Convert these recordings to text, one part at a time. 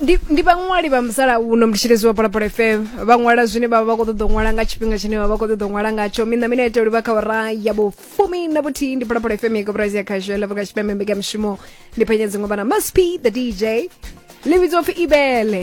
ndi ndi vhaṅwali vha musalauno ndi tshilezi wa phalaphala fm vha ṅwala zwine vha vha vha khou ṱoḓa u ṅwala nga tshifhinga tshine vha vha khou ṱoḓa u ṅwala ngatsho mina mina ita uri vha kha ora ya vhufumi na vhuthihi ndi phalaphala fm ya koporasi ya khasho yela vhaka tshipembe mbekamishumo ndi phenya dziṅwe vhana must be the dj ḽi vhidzwa pfi ibele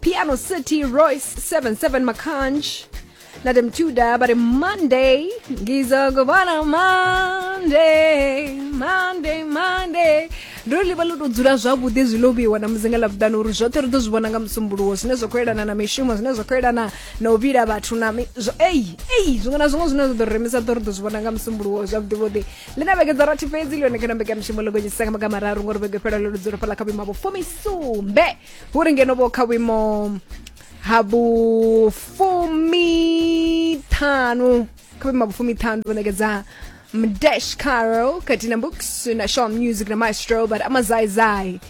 piano city royce 77 makanj nade mtuda bari monday ngizokubona monday monday monday ndo ḽi vha ḽo tou dzula zwavhuḓi zwi ḽo vheiwa na muzinga ḽa vhuḓani uri zwoṱhe ri ḓo zwi vhona nga musumbuluwo zwine zwa khou elana na mishumo zwine zwa khou elana na u vhila vhathu na mi- zwo- eyi eyi zwiṅwe na zwiṅwe zwine zwa ḓo ri remisa ḓo ri ḓo zwi vhona nga musumbuluwo zwavhuḓivhuḓi ḽi na vhege dza rathi fhedzi ḽi yone kana mbekamishumo ḽo gonyisisa nga maga mararu ngori vhege fhela ḽo ḽi dzula fhaḽa kha vhuima vho fumisumbe hu ri ngeno vho kha vhuimo ha vhufumiṱhanu kha vhuimo ha vhufumiṱhanu vho ṋekedza mdash carol khathihi na books na shaw music na maestro but amazaizai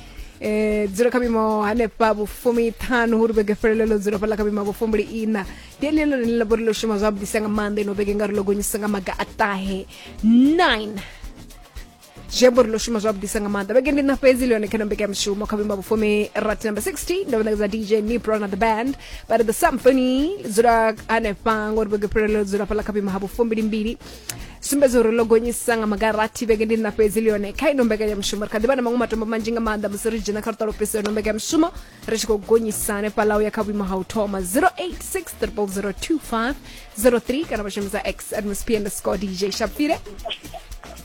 eh dzula kha vhuimo hanefha vhufumiṱhanu hu ri vhege felelelo dzula fhaḽa kha vhuimo ha vhufumbuli ina ndi ene ḽone ḽi labori ḽo shuma zwavhuḓisa nga maanḓa ino vhege nga ri ḽo gonyisa nga maga a ṱahe 9 zwi amba uri ḽo shuma zwavhuḓisa nga maanḓa vhege ndi na fhedzi ḽi yone kha nombeka ya mushumo kha vhuima vhufumi rat number 60 ndo vhanakadza dj nipro na the band but the symphony dzula hanefha ngori vhege fhirelo dzula fhala kha vhuima ha vhufumbilimbili sumbedza uri ḽo gonyisa nga magarathi vhege ndi na fhedzi ḽi yone kha ino mbekanyamushumo ri kha ḓivha na maṅwe matombo manzhi nga maanḓa musi ri dzhena kha luṱa lufhiso ino mbekanyamushumo ri tshi khou gonyisa hanefhaḽa u ya kha vhuimo ha u thoma 0860025003 kana vha shumisa x atmosphere underscore dj shapfire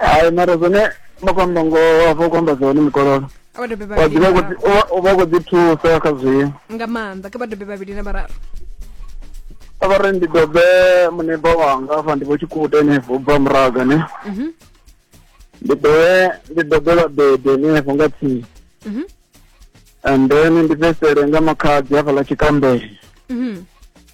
hai mara zwone makwamba ngo hafho kwamba zwone mikololo vhabebi wa ḓivha u khou vhavhili dzi- u vha- u vha u khou ḓi thusa kha zwio nga maanḓa ke vhabebi vhavhili na vhararu a vha ri ndi dobe muneba wanga afha ndi vho tshikuta henefho u bva muraga ne Mhm, ndi dobe ndi dobe vhabebi henefho nga tsini mhm, and then ndi fhesele nga makhadzi hafhaḽa tshikambele mhm.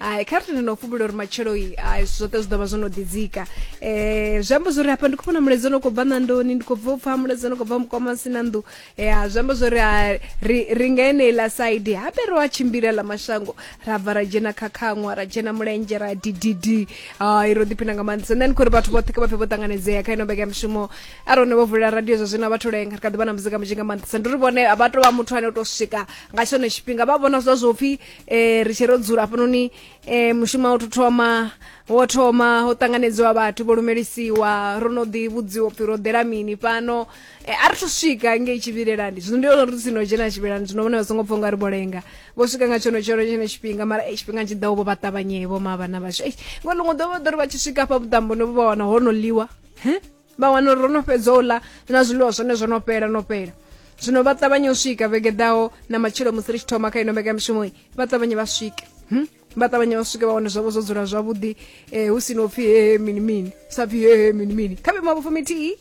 hai kha ri tende no fhumula uri matshelo-i hai zwithu zwoṱhe zwi ḓo vha zwo no ḓidzika um zwi amba zwori hafha ndi khou vhona mulaedza o no khou bva ṋandoni ndi khou bva u pfha mulaedza o no khou bva mukoma si na nnḓu ya zwi amba zwori ha ri ri nga eneiḽa saidi habe ro a tshimbila ḽa mashango ra bva ra dzhena kha khaṅwa ra dzhena mulenzhe ra dididi hai ro ḓiphina nga maanḓesa nṋe ndi khou ri vhathu vhoṱhe kha vha pfhe vho ṱanganedzea kha ino vhege ya mushumo a ri hone vho vulela radio zwa zwino a vha thu lenga ri kha ḓi vha na muzika munzhi nga maanḓesa ndi uri vhone a vha tou vha muthu ane o tou swika nga tshone tshifhinga vha vhona zwa zwo pfhi eh ri tshi ro dzula hafhanoni eh mushumo wo thoma wo thoma ho tanganedziwa vhathu vho lumelisiwa ro no ḓi vhudziwa phi ro ḓela mini fhano eh a ri thu swika ngei tshivhilelani zwino ndi uri sino dzhena tshivhilelani zwino vhone vha songo pfha unga ri vho lenga vho swika nga tshono tshono tshine tshifhinga mara eh tshifhinga tshi ḓaho vho vha ṱavhanyevho ma vhana vhashu eh ngo ḽiṅwe ḓo vha ḓo ri vha tshi swika hafha vhuṱamboni vho vha wana ho no ḽiwa he vha wana uri ro no fhedza u ḽa na zwiḽiwa zwone zwo no fhela no fhela zwino vha ṱavhanye u swika vhege ḓaho na matshilo musi ri tshi thoma kha ino mbekamishumo vha ṱavhanye vha swike hmm? vha ṱavhanye vha swike vha wane zwavho zwo dzula zwavhuḓi um hu si no pfhi hehe mini mini sa pfhi hehe mini mini kha vhe mavhofo mithihi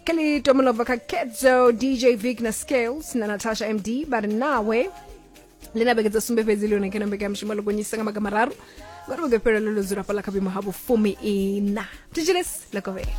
ke ḽi tomolobva kha kedzo dj vic na scales na natasha md vha ri nawe ḽi na vhege dza sumbe fhedzi ḽi hone kha na mbekanyamushumo ḽo gonyisa nga maga mararu ngori vhege fhelo ḽo ḽo dzula fhaḽa kha vhuimo ha vhufumi ina thetshelesi ḽa kovhela